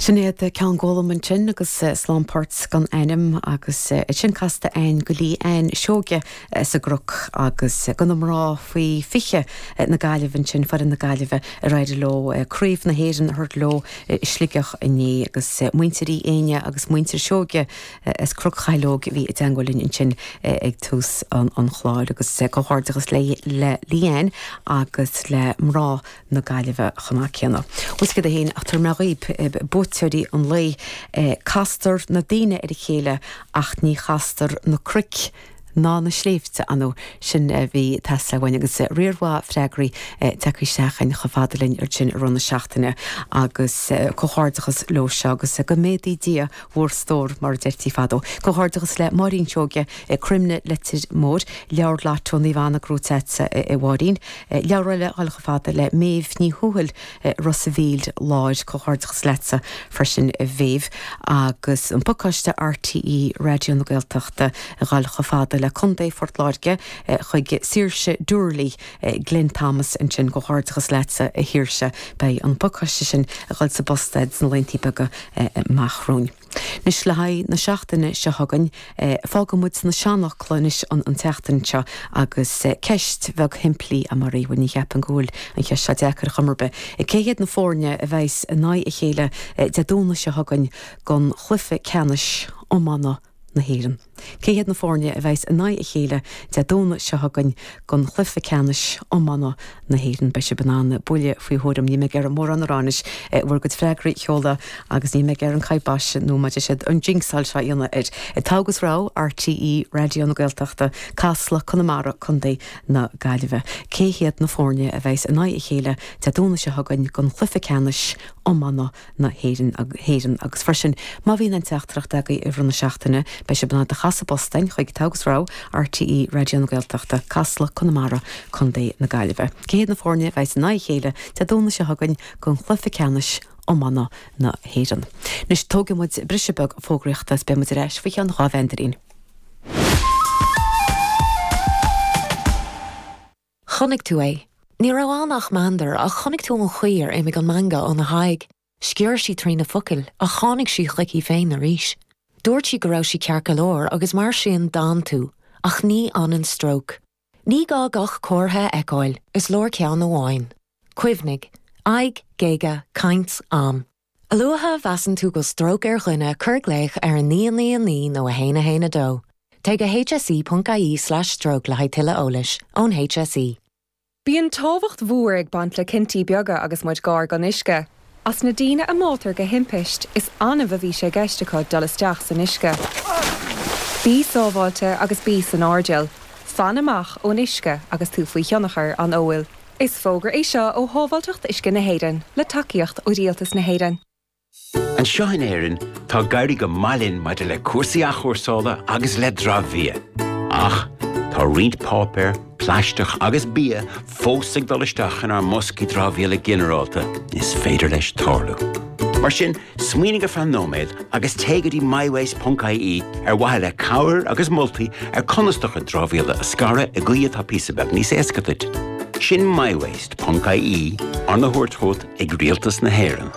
Sin iad Ceann Gólaim ansin agus Slán Port gan Ainm agus iad sin casta againn do Lí Anne Seoige sa gCnoc agus do na mná faoi 20 na Gaillimhe ansin, foireann na Gaillimhe ar éirigh leo craobh na hÉireann a thabhairt leo i Sligeach inné agus muintir Uí Éinne agus muintir Seoige as Cnoc Chathail Óig a bhí i dteagmháil linn ansin ag tús an chláir agus comhghairdeachas le Lí Anne agus le mná na Gaillimhe chomh maith céanna. Bhuel, céard é fhéin ach tabharfaidh mé dhaoib, buaiteoirí an lae. Castar na daoine ar a chéile ach ní chastar na cnoic ná na sléibhte, ar ndóigh? Sin a bhí ag teastáil uainn agus riar mhaith freagraí tagtha isteach againn chomh fada linn air sin i rith na seachtaine agus comhghairdeachas leo seo agus go méadaí Dia bhur stór mar a deirtí fadó. Comhghairdeachas le Máirín Seoige, Cruimne, Leitir Móir, Leabhar Lotto Naomh Anna, gnóite agatsa, a Mháirín. Leabhar eile ag dul chomh fada le Méabh Ní Thuathail i Ros a' Mhíl láir. Comhghairdeachas leatsa freisin a Mhéabh. Agus an pacáiste RTÉ Raidió na Gaeltachta ag dul chomh fada le Contae Phort Láirge chuig Saoirse Doorley, Glen Thomas ansin. Comhghairdeachas leatsa a Shaoirse. Beidh an pacáiste sin ag dul sa bpost duit sna laethanta beaga amach romhainn. Anois, le haghaidh na seachtaine seo chugainn, fágfaidh muid as na seanfhocla anois an tseachtain seo agus ceist bheag shimplí, a Mhary, bhuel, ní cheapaim go bhfuil an cheist seo deacair ar chuma ar bith, cé hiad na foirne a bheas in aghaidh a chéile Dé Domhnaigh seo chugainn don chluiche ceannais iomána na hÉireann? Cé hiad na foirne a bheas in aghaidh a chéile Dé Domhnaigh seo chugainn don chluiche ceannais iomána na hÉireann? Beidh sibh in ann buille faoi thuairim, ní bheidh oraibh mórán a rá anois ach bhur gcuid freagraí a sheoladh agus ní bheidh oraibh an kybosh nó mar a deir siad an jinxáil seo a dhéanamh air. Togha agus Rogha, RTÉ Raidió na Gaeltachta, Casla, Conamara, Co. na Gaillimhe. Cé hiad na foirne a bheas in aghaidh a chéile Dé Domhnaigh seo chugainn don chluiche ceannais iomána na hÉireann agus freisin má bhíonn aon teachtaireacht agaibh i rith na seachtaine beidh sibh in ann iad a chur sa bpost againn chuig Togha agus Rogha, RTÉ Raidió na Gaeltachta, Casla, Conamara, Co. na Gaillimhe. Cé hiad na foirne a bheas in aghaidh a chéile Dé Domhnaigh seo chugainn don chluiche ceannais iomána na hÉireann? Anois tógfaidh muid briseadh beag fógraíochta is beidh muid ar ais faoi cheann dhá mheandairín. Chonaic tú é. Ní raibh ann ach meandar, ach chonaic tú an chaoi ar imigh an meangadh óna haghaidh. Sciorr sí trí na focail, ach tháinig sí chuici féin arís. Dúirt sí go raibh sí ceart go leor, agus mar sin d'fhan tú, ach ní fhanann stróc. Ní gá gach comhartha a fheiceáil, is leor ceann amháin. Cuimhnigh. Aghaidh, géaga, caint, am. A luaithe a mheasann tú go bhfuil stróc ar dhuine, cuir glaoch ar 999 nó 112. Téigh go hse.ie/stroke le haghaidh tuilleadh eolais ón HSE. Bíonn tábhacht mhór ag baint le cinntí beaga agus muid gar gon uisce. As na daoine a mbáitear go timpisteach, is annamh a bhí sé i gceist acu dul isteach san uisce. Bí sábháilte agus bí san airdeall. Fan amach ón uisce agus tú faoi thionchar an óil. Is fógra é seo ó Shábháilteacht Uisce na hÉireann, le tacaíocht ó Rialtas na hÉireann. Anseo in Éirinn, tá ag éirí go maith linn maidir le cúrsaí athchúrsála agus le dramhbhia. Ach, tá roinnt páipéar, plaisteach agus bia fós ag dul isteach inár mboscaí dramhaíola ginearálta, is féidir leis tarlú. Mar sin, Smaoinigh ar feadh nóiméad agus téigh go dtí mywaste.ie ar mhaithe le cabhair agus moltaí ar conas do chuid dramhaíola a scaradh i gcaoi atá píosa beag níos éasca duit. Sin mywaste.ie, arna thabhairt chugat ag Rialtas na hÉireann.